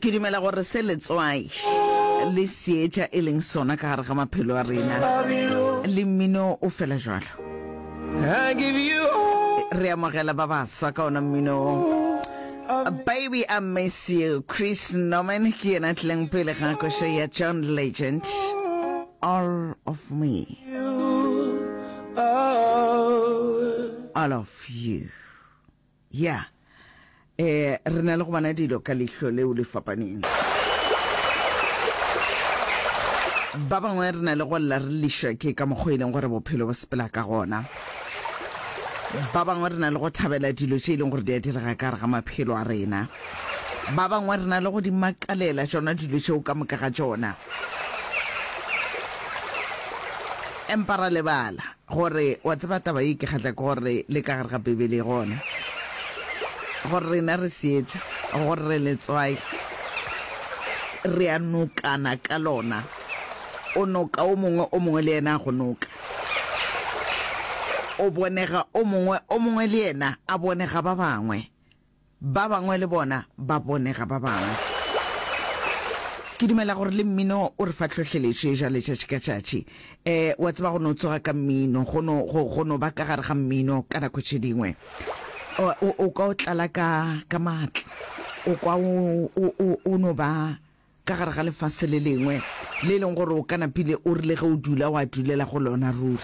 ke dumela gore se letswai le seetša e leng sona ka gare ga maphelo a rena le mmino o fela jalo re amogela ba baswa ka ona mmino baby i miss you chris norman ke yena tlileng pele ga košo ya john legend all of me all of you Ya, e, re na le go bona dilo ka lehlo leo le fapaneng. Ba bangwe re na le go lla re lišwa ke ka mokgwa e leng gore bophelo bo sepela ka gona. Ba bangwe re na le go thabela dilo tše e leng gore di a direga ka gare ga maphelo a rena. Ba bangwe re na le go di makalela tšona dilo tšeo ka moka ga tšona. Empa ra lebala, Gore, wa tseba, taba ye e ke kgahla ke gore le ka gare ga Beibele e gona. Gore rena re seetša, gore re letswai, re a nokana ka lona. O noka o mongwe, o mongwe le yena a go noka. O bonega o mongwe, o mongwe le yena a bonega ba bangwe. Ba bangwe le bona ba bone ga ba bangwe. Ke dumela gore le mmino o re fa tlhohleletšo e jwa letšatši ka tšatši. Um, wa tseba go no tsoga ka mmino, go no, go, go no ba ka gare ga mmino ka nako tše dingwe. O, o, o kwa o tlala ka, ka maatla. O kwa o, o, o, o no ba ka gare ga lefase le lengwe le e leng gore o ka napile o rile ge o dula wa dulela go lona ruri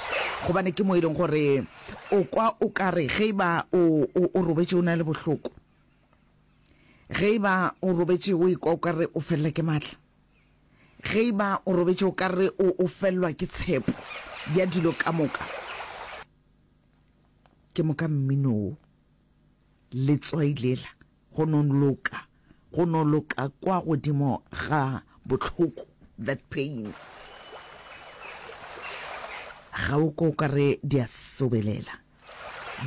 gobane ke mo e leng gore o kwa o ka re ge e ba o, o, o robetše o na le bohloko ge e ba o robetše o ikwa o ka re o felela ke maatla ge e ba o robetše o ka re o, o felelwa ke tshepo ya dilo ka moka ke moka mminoo Letswai lela, go no loka, go no loka kwa godimo ga bohloko, that pain. Ga o ko ka re di a sobelela,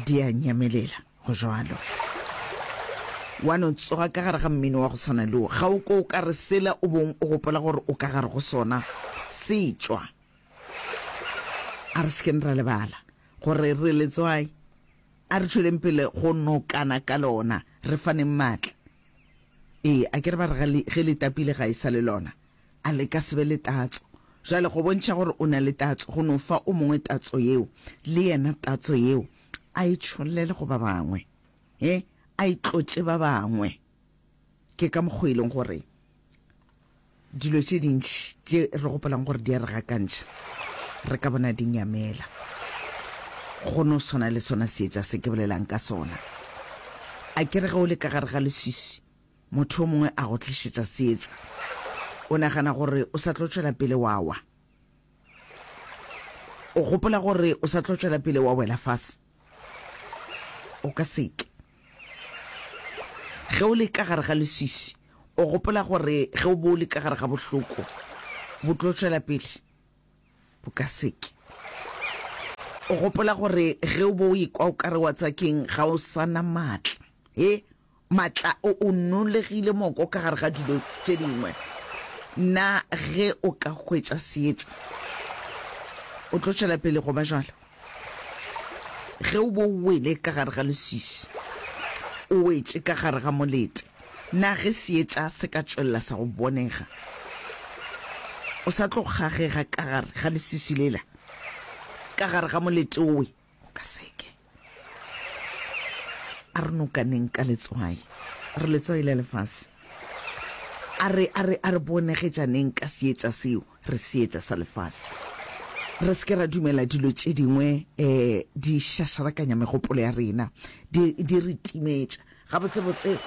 di a nyamelela, go jwalo. Wa no tsoga ka gare ga mmino wa go tshwana le wo. Ga o ko ka re sela o bong o gopola gore o ka gare go sona se tšwa. A re sekeng ra lebala gore re letswai. A re tšweleng pele go nokana ka lona, re faneng maatla. Ee, a ke re ba re ge le tapile ga e sa le lona, a le ka se be le tatso. Bjale, go bontšha gore o na le tatso, go no fa o mongwe tatso yeo, le yena tatso yeo a e tšhollele go ba bangwe, he, a e tlotše ba bangwe. Ke ka mokgwa e leng gore dilo tše dintši tše re gopolang gore di a re gakantšha re ka bona di nyamela go no swana le sona seetša se ke bolelang ka sona a ke re ge o le ka gare ga leswisi motho o mongwe a go tlišetša seetša o nagana gore o sa tlo tšwela pele wa wa o gopola gore o sa tlo tšwela pele wa wela fase o ka seke ge o le ka gare ga leswisi o gopola gore ge o bo o le ka gare ga bohloko bo tlo tšwela pele bo ka seke o gopola gore ge o bo o ekwa o ka re wa tsakeng ga o sana maatla e Matla o o nolegile moko ka gare ga dilo tše dingwe. Na ge o ka hwetša seetša o tlo tšwela pele go ba jalo? Ge o bo wele ka gare ga leswiswi, o wetše ka gare ga molete, na ge seetša se ka tšwelela sa go bonega, o sa tlo kgagega ka gare ga leswiswi lela, ka gare ga molete owe? O ka seke. A re nokaneng ka letswai. A re letswai la lefase. A re, a re, a re bonegetšaneng ka seetša seo, re seetša sa lefase. Re se ke ra dumela dilo tše dingwe um di šašarakanya megopolo ya rena, di, di re timetša. Gabotsebotse,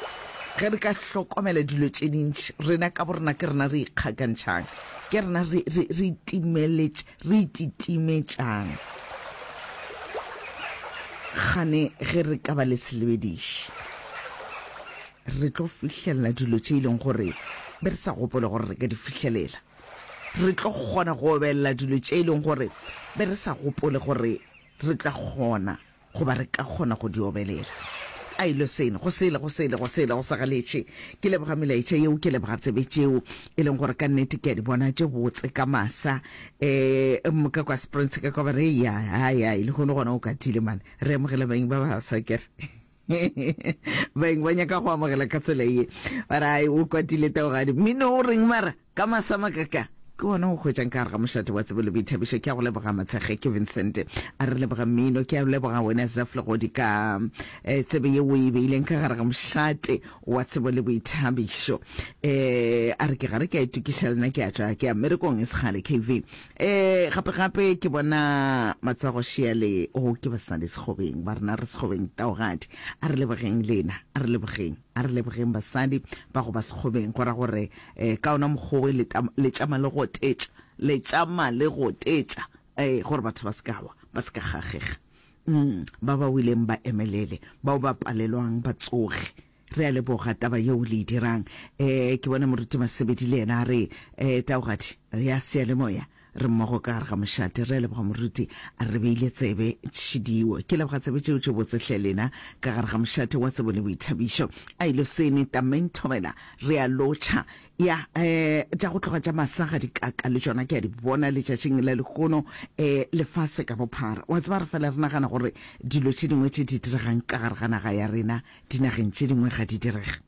ge re ka hlokomela dilo tše dintši, rena ka borena ke rena re ikgakantšhang, ke rena re, re, re itimeletš, re ititimetšang. Gane ge re ka ba le selebediši, re tlo fihlelela dilo tše e leng gore be re sa gopole gore re ka di fihlelela. Re tlo kgona go obelela dilo tše e leng gore be re sa gopole gore re tla kgona Goba re ka kgona go di obelela. A e lwe seno, go sele, go sele, go sele, go sa galetše. Ke leboga melaetša yeo, ke leboga tsebe tšeo, e leng gore ka nnete ke a di bona tše botse ka masa. Um, ka kwa Springs, ka kwa ba re, ya, ya, ya, e lehono gona o katile, man. Re amogela baeng ba ba sa kere. baeng ba nyaka go amogela ka tsela ye bara o kwatile taogadi mmino o reng mara Ka masamaka ka, ke gona go hwetšang ka gare ga mošate wa tsebo le boithabišo. Ke a go leboga Matshekge, ke Vincent a re leboga mmino. Ke a leboga wena Zeph Legodi ka eh, tsebe ye o e beileng ka gare ga mošate wa tsebo le boithabišo. Eh, a re ke gare ke a itokiša lena ke a tšwa ke a merekong e segale KV. Eh, gape gape ke bona matsogo Sheale o ke basadi Sekgobeng ba rena re Sekgobeng Taogadi. A re lebogeng lena, a re lebogeng. A re lebogeng basadi ba go ba sekgobeng, go ra gore ka ona mokgwa oe le tšama le gotetša, le tšama le gotetša, ee, gore batho ba se ka wa, ba se ka gagega. Umm, ba ba weleng ba emelele, bao ba palelwang ba tsoge. Re a leboga taba yeo le e dirang. Ee, ke bona Moruti Masebedi le yena a re, Ee, taogadi ya seyalemoya. Re mmogo ka gare ga mošate. Re a leboga moruti. A re beile tsebe tšhidiwo. Ke leboga tsebe tšeo tše botse hle lena. Ka gare ga mošate wa tsebo le boithabišo. A e lo sene tameng thobela. Re a lotšha. Ya eh tša go tloga tša masa ga di kaka le tšona ke a di bona letšatšing la lehono eh lefase ka bophara. Wa tseba re fela re nagana gore dilo tše dingwe tše di diregang ka gare ga naga ya rena dinageng tše dingwe ga di direge.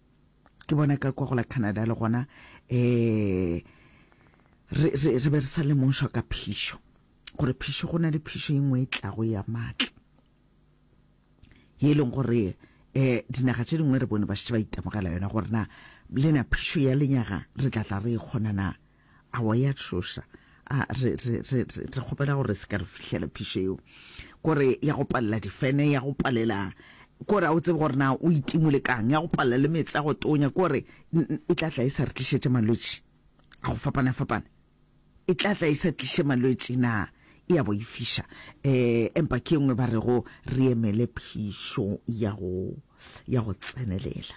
ke bona ka kwa go la Canada le gona eh re re re be re sa lemošwa ka phišo gore phišo go na le phišo e nngwe e tlago ya matla ye e leng gore eh dinaga tše dingwe re bone ba šetse ba itemogela yona gore na lena phišo ya lenyaga re tla tla re e kgona na A wa ya tšhoša. A re, re, re, re, re kgopela gore se ka re fihlela phišo yeo. Kore ya go palela difene, ya go palela kore a o tsebe gore na o itimole kang, ya go palela le meetse a go tonya, kore e tla tla e sa re tlišetše malwetši a go fapana-fapana, e tla tla e sa tliše malwetši na e ya boifiša. Um empa ke e nngwe ba rego re emele phišo ya go, ya go tsenelela.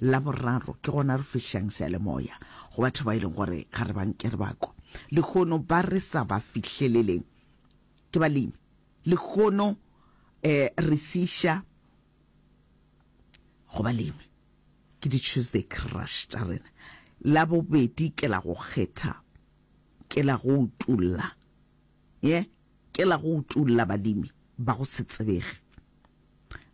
La boraro, ke gona re fihlang seyalemoya go batho ba e leng gore ga re ba nke re ba kwa. Lehono ba re sa ba fihleleleng ke balemi. Lehono um re se iša go balemi ke di-Tuesday Crush tša rena. La bobedi, ke la go kgetha, ke la go utolla, ye ke la go utolla balemi ba go se tsebege.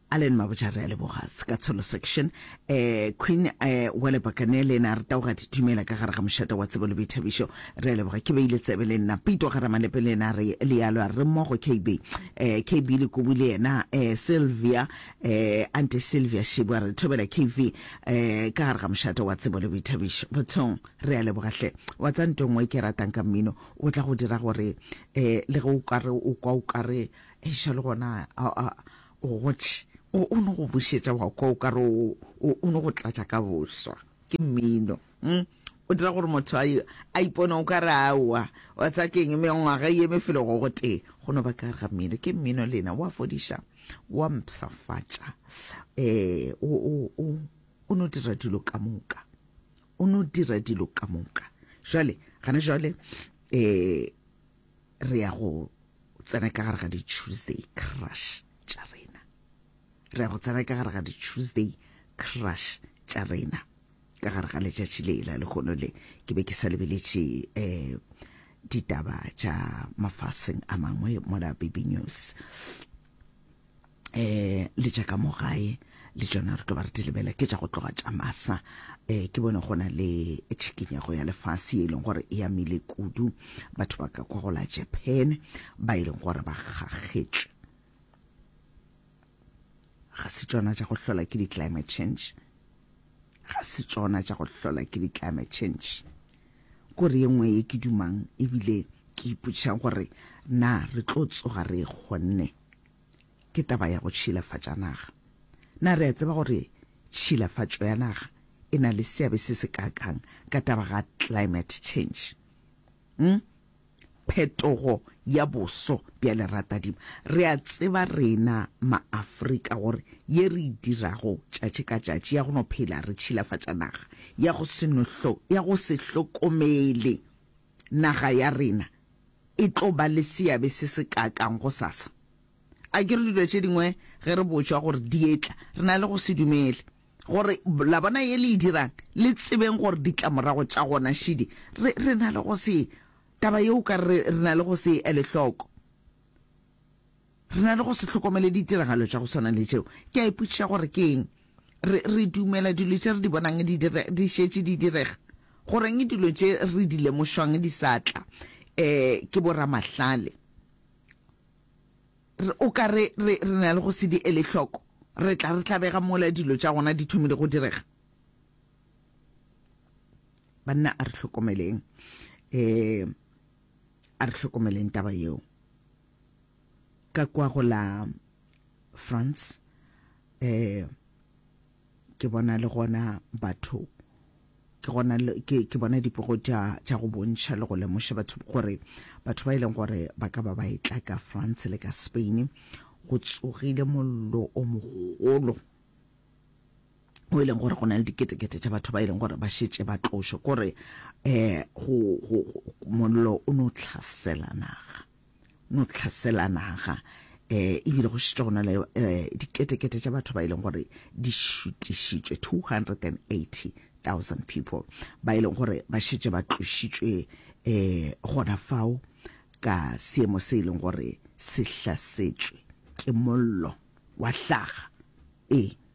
Allen Mabotja re a leboga ka tsholo section eh Queen eh wale bakane le na re tao ga ditumela ka gare ga mošata wa tsebo le boithabišo re a leboga ke beile tsebe le nna pito ga ramalepe le na re le yalo re mmogo KB eh KB le kubu le yena eh Sylvia eh ante Sylvia Shibwa re thobela KV eh ka gare ga mošata wa tsebo le boithabišo bothong re a leboga hle wa tsa ntongwe ke ratang ka mmino o tla go dira gore eh le go ukare o kwa ukare Eiša le gona o gotše, o no go bušetša wa kwa o ka re o no go tlatša ka boswa ke mmino. Hm? O dira gore motho a ipone o ka re aowa wa tsa keng mengwaga ye mefelo go gotee go no ba ka ga mmino. Ke mmino lena wa fodiša, wa mpshafatša, um o no dira dilo ka moka, o no dira dilo ka moka. Jwale gana jwale um re ya go tsena ka gare ga di-tuesday crush tša rena re ya go tsena ka gare ga di-tuesday crush tša rena ka gare ga letšatši le la lehono le ke be ke sa lebeletše um ditaba tša mafaseng a mangwe mola baby news eh le tša ka mo gae le tšona re tlo ba re di lebela ke tša go tloga tša masa eh ke bone gona le tshikinyego ya lefase e leng gore e amile kudu batho ba ka kwa go la japan ba e leng gore ba kgakgetšwe ga se tšona tša go hlola ke di-climate change ga se tšona tša go hlola ke di-climate change kore ye nngwe ye ke dumang ebile ke ipotšang gore na re tlo tsoga re e kgonne ke taba ya go tšhilafatša naga. Na re a tseba gore tšhilafatšo ya naga e na le seabe se se kaakang ka taba ga climate change? Hm? Phetogo ya boso bja leratadima. Re a tseba rena Maafrika gore ye re e dirago tšatši ka tšatši ya go no phela re tšhilafatša naga, ya go se no hlo, ya go se hlokomele naga ya rena e tlo ba le seabe se se kaakang go sasa? Akere dilo tše dingwe ge re botšwa gore di etla, re na le go se dumele. Gore la bona ye le e dirang, le tsebeng gore ditlamorago tša gona šidi, re, re na le go se, taba ye o ka re re na le go se e ele hloko. Re na le go se hlokomele ditiragalo tša go swana le tšeo. Ke a ipotšiša gore ke eng. Re, re dumela dilo tše re di bonang di dire, di šetše di direga. Goreng dilo tše re di lemošwang di sa tla e, ke boramahlale? Re, o ka re, re, re na le go se di ele hloko. Re tla re tlabega mola dilo tša gona di thomile go direga. Banna, a re hlokomeleng, e, a re hlokomeleng taba yeo. ka kwa go la France eh ke bona le gona batho ke gona ke ke bona dipogo tša tša go bontšha le go lemoša batho gore batho ba e leng gore ba ka ba ba etla ka France le ka Spain go tsogile mollo o mogolo o e leng gore go na le diketekete tša batho ba e leng gore ba šetše ba tlošo kore um eh, mollo o no tlhasela naga no tlhasela naga e ebile go šetša gona le diketekete tša batho ba e leng gore di šutišitšwe 280,000 people ba e leng gore ba šetše ba tlošitšwe um gona fao ka seemo se e leng gore se hlasetšwe ke mollo wa hlaga ee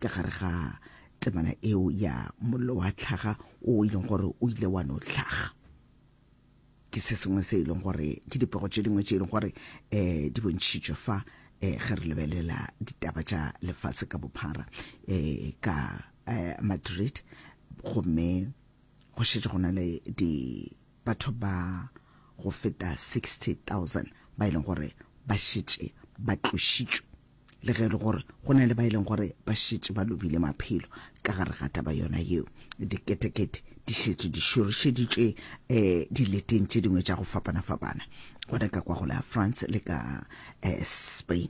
ka gare ga temana eo ya mollo wa tlhaga o e leng gore o ile wa no tlhaga ke se sengwe se e leng gore ke dipego tše dingwe tše e leng gore um di bontšhitšwe fa um ge re lebelela ditaba tša lefase ka bophara um ka madrid gomme go šetše go na le di batho ba go feta 60 000 ba e leng gore ba šetše ba tlošitšwe le ge e le gore go na le ba e leng gore ba šetše ba lobile maphelo ka gare ga taba yona yeo diketekete di šetše di šorišeditšwe um eh, dileteng tše dingwe tša go fapana-fapana gona ka kwa go la france le ka um spain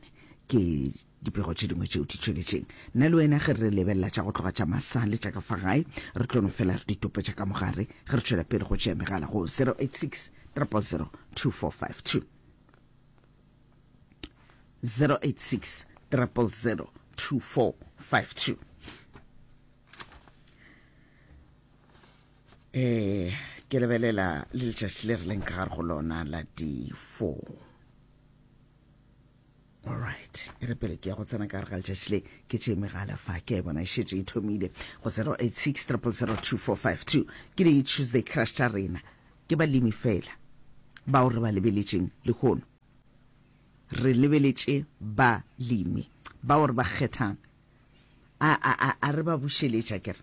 ke dipego tše dingwe tšeo di tšweletšeng nna le wena ge re lebelela tša go tloga tša masa le tša ka fa gae re tlo no fela re ditope tša ka mogare ge re tšwela pele go tšea megala go 086 300 2452 0860002452 eh ke lebelela le letšatši le re leng ka gare go lona la di four alright e re pele ke ya go tsena ka gare ga letšatši le ke tše megala fa ke a e bona e šetše e thomile go 086 ke di-tuesday crush tša rena Ke balemi feela bao re ba lebeletšeng lehono. Re lebeletše balemi bao re ba kgethang. A, a, a, a re ba bušeletša, ke re,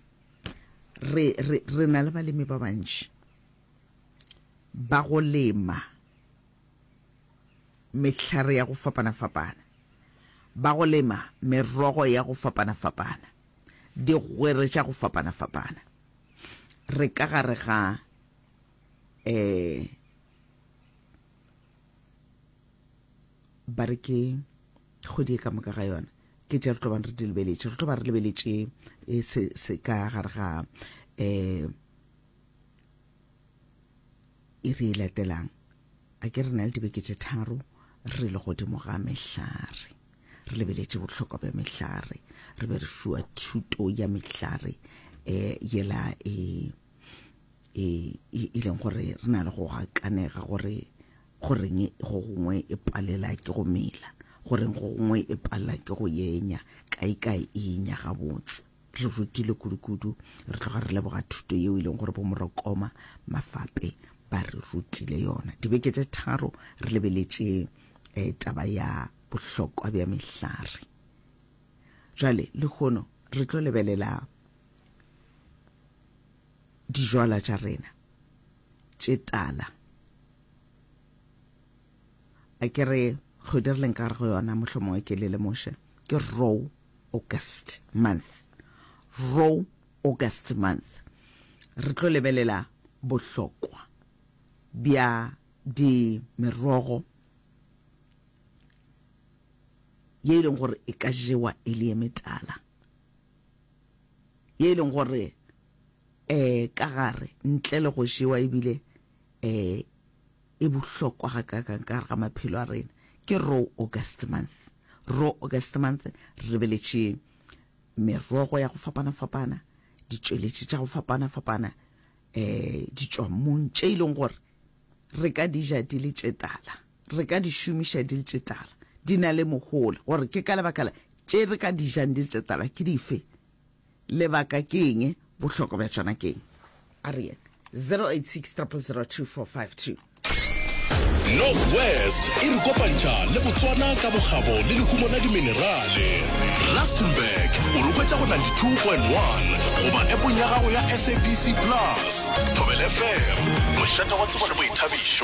re, re, re na le balemi ba bantši ba go lema mehlare ya go fapana-fapana, ba go lema merogo ya go fapana-fapana, digwere tša go fapana-fapana. Re ka gare ga eh ba re ke kgwedi e ka moka ga yona ke tša re tlo bang re di lebeletše re tlo ba re lebeletše eh, se se ka gare ga um e re e latelang a ke re na le dibeke tše tharo re le godimo ga mehlare re lebeletše bohlokwa bja mehlare re be re fiwa thuto ya mehlare um yela e e, e, e leng gore re na le go gakanega gore goreng go gongwe e palela ke go mela goreng go gongwe e palela ke go yenya kae kae e yenya gabotse re rutile kudu-kudu re tloga re leboga thuto yeo e leng gore bomorokoma mafape ba re rutile yona dibeke tse tharo re lebeletše um taba ya bohlokwa bja mehlare jale le kgono re tlo lebelela dijwalwa tša rena tše tala a ke re kgwedi re leng ka gare go yona motlho mongwe ke le lemoše ke row august month row august month re tlo lebelela bohlokwa bja di merogo ye e leng gore e ka jewa e le ye metala ye e leng gore um ka gare ntle le go jewa ebile um e bohlokwa ga kakang ka gare ga maphelo a rena ke raw august month raw august month re beletše merogo ya go fapana-fapana ditšweletši tša go fapana-fapana um ditšwammong tše e leng gore re ka dija di le tše tala re ka di šomiša di le tše tala, di na le mohola, gore ke ka lebaka la tše re ka di jang di le tše tala ke dife, lebaka ke eng, bohlokwa bja tšona ke eng. A re yena 086 000 2452. Northwest e re kopantšha le Botswana ka bokgabo le lehumo la diminerale. Rustenburg o re hwetša go 92.1 goba appong ya gago ya SABC Plus. Thobela FM, mošate wa tsebo le boithabišo.